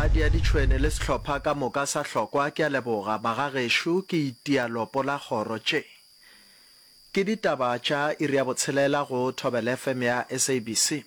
Kgadi ya ditšhwene le sehlopha ka moka sa hlokwa ke a leboga bagagešo ke itia lopo la kgoro tše ke ditaba tša iri ya botshelela go thobel FM ya SABC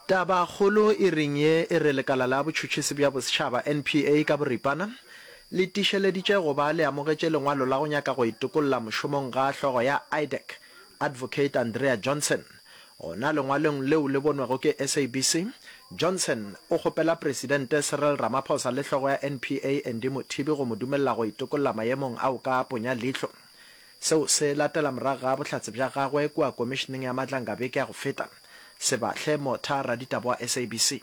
taba kgolo iring ye e re lekala la botšhutšhisi bja bosetšhaba NPA ka boripana le tišeleditše go ba le amogetše lengwalo la go nyaka go itokolla mošomong ga hlogo ya IDEC Advocate Andrea Johnson Gona lengwalong leo le bonwago ke SABC, Johnson o kgopela Presidente Cyril Ramaphosa le hlogo ya NPA Andy Mothibi go mo dumelela go itokolla maemong ao ka ponya leihlo. Seo se latela morago ga bohlatse bja gagwe kua Komišeneng ya Matlanga beke ya go feta, Sebahle Motha, raditaba wa SABC.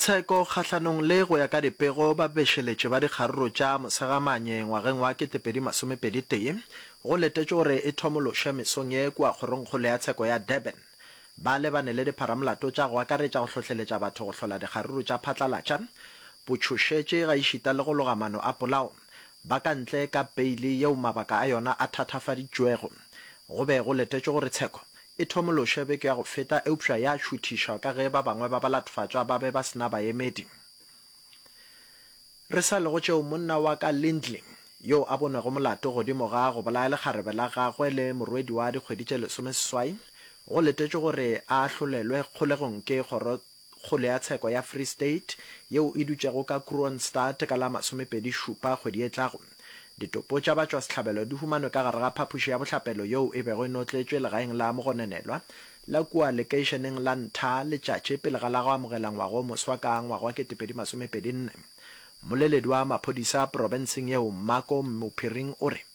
Tsheko kgahlanong le go ya ka dipego babešeletši ba dikgaruru tša Mosegamanye ngwageng wa 2021 go letetšwe gore e thomološwe mesong ye kua kgorongkgolo ya tsheko ya Durban. Ba lebane le dipharamolato tša go akaretša go hlohleletša batho go hlola dikgaruru tša phatlalatša, botšhošetši gaešita le go loga mano a polao ba ka ntle ka peili yeo mabaka a yona a thathafaditšwego. Go be go letetšwe gore tsheko E thomološe beke ya go feta eupša ya šuthišwa ka ge ba bangwe ba balatfatšwa ba be ba se na baemedi. Re sa le go tšeo, monna wa ka Lindley, yo a bonwego molato godimo ga go bolaya lekgarebe la gagwe le morwedi wa dikgwedi tše lesomeseswai, go letetšwe gore a ahlolelwe kgolegong ke kgoro kgole ya tsheko ya Free State, yeo e dutšego ka Kroonstad ka la masomepedi šupa kgwedi e tlago. Ditopo tša batšwasehlabelo di humanwe ka gare ga phapoši ya bohlapelo yeo e bego e notletšwe legaeng la mogononelwa la kua lekeišeneng la Ntha letšatši pele ga la go amogela ngwaga o moswa ka ngwaga wa ketepedi masomepedi nne. Mmoleledi wa maphodisa profenseng yeo Mako Mmophiring o re,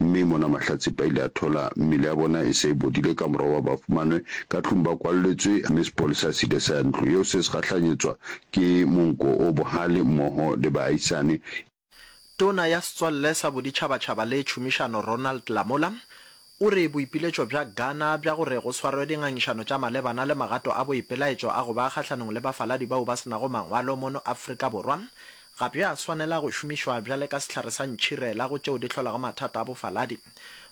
Mme mona Mahlatse ba ile a thola mmele ya bona e se e bodile ka morago ba ba fumanwe ka tlung ba kwalletswe mme sepolesa se ile sa ya ntlo yeo se se gahlanyetswa ke monko o bohale mmoho le baahisane. Tona ya Setswalle sa Boditšhabatšhaba le Tšhomišano Ronald Lamola o re boipiletšo bja Ghana bja gore go swarwe dingangišano tša malebana le magato a boipelaetšo a go ba kgahlanong le bafaladi bao ba se nago mangwalo mono Afrika Borwa Ga bja swanela go šomišwa bjale ka sehlare sa ntšhirela go tšeo di hlolago mathata a bofaladi.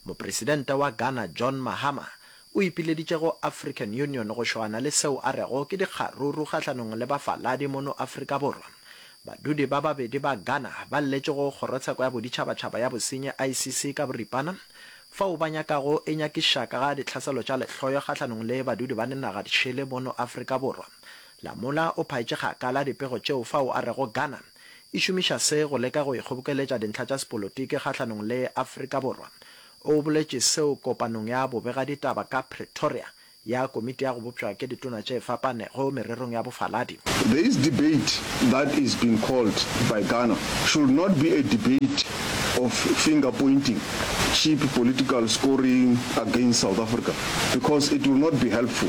Mopresidente wa Ghana John Mahama o ipileditše go African Union go šoana le seo a rego ke dikgaruru kgahlanong le bafaladi mono Afrika Borwa. Badudi ba babedi ba Ghana ba lletše go Kgorotsheko ya Boditšhabatšhaba ya Bosenyi, ICC, ka boripana fao ba nyakago e nyakišaka ga ditlhaselo tša lehloyo kgahlanong le badudi ba dinaga di šele mono Afrika Borwa Lamola o phaetše kgakala dipego tšeo fao a rego Ghana e šomiša se go leka go ikgobokeletša dintlha tša sepolotiki kgahlanong le Afrika Borwa. O boletše seo kopanong ya bobegaditaba ka Pretoria ya Komiti ya go Bopšwa ke Ditona tše Fapanego Mererong ya Bofaladi. This debate that is being called by Ghana should not be a debate of finger pointing, cheap political scoring against South Africa because it will not be helpful.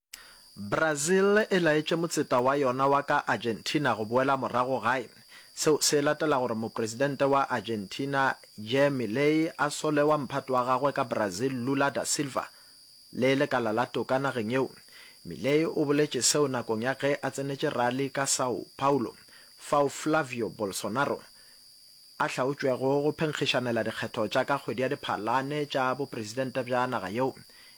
Brazil e laetše motseta wa yona wa ka Argentina go boela morago gae. Seo se latela gore mopresidente wa Argentina Jair Milei a sole wa mphato wa gagwe ka Brazil Lula da Silva le lekala la toka nageng yeo. Milei o boletše seo nakong ya ge a tsenetše rally ka Sao Paulo fao Flavio Bolsonaro a hlaotšwego go phenkgišanela dikgetho tša ka kgwedi ya Diphalane tša bopresidente bja naga yeo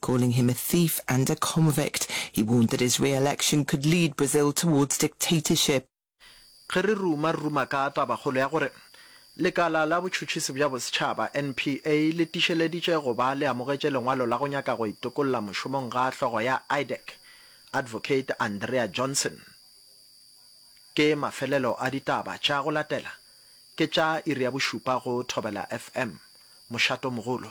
Calling him a thief and a convict, he warned that his re-election could lead Brazil towards dictatorship. Ge re ruma-ruma ka tabakgolo ya gore Lekala la Botšhotšhisi bja Bosetšhaba, NPA, le tišeleditše go ba le amogetše lengwalo la go nyaka go itokolla mošomong ga hlogo ya IDAC, Advocate Andrea Johnson, ke mafelelo a ditaba tša go latela, ke tša iri ya bošupa go Thobela FM. Mošato mogolo.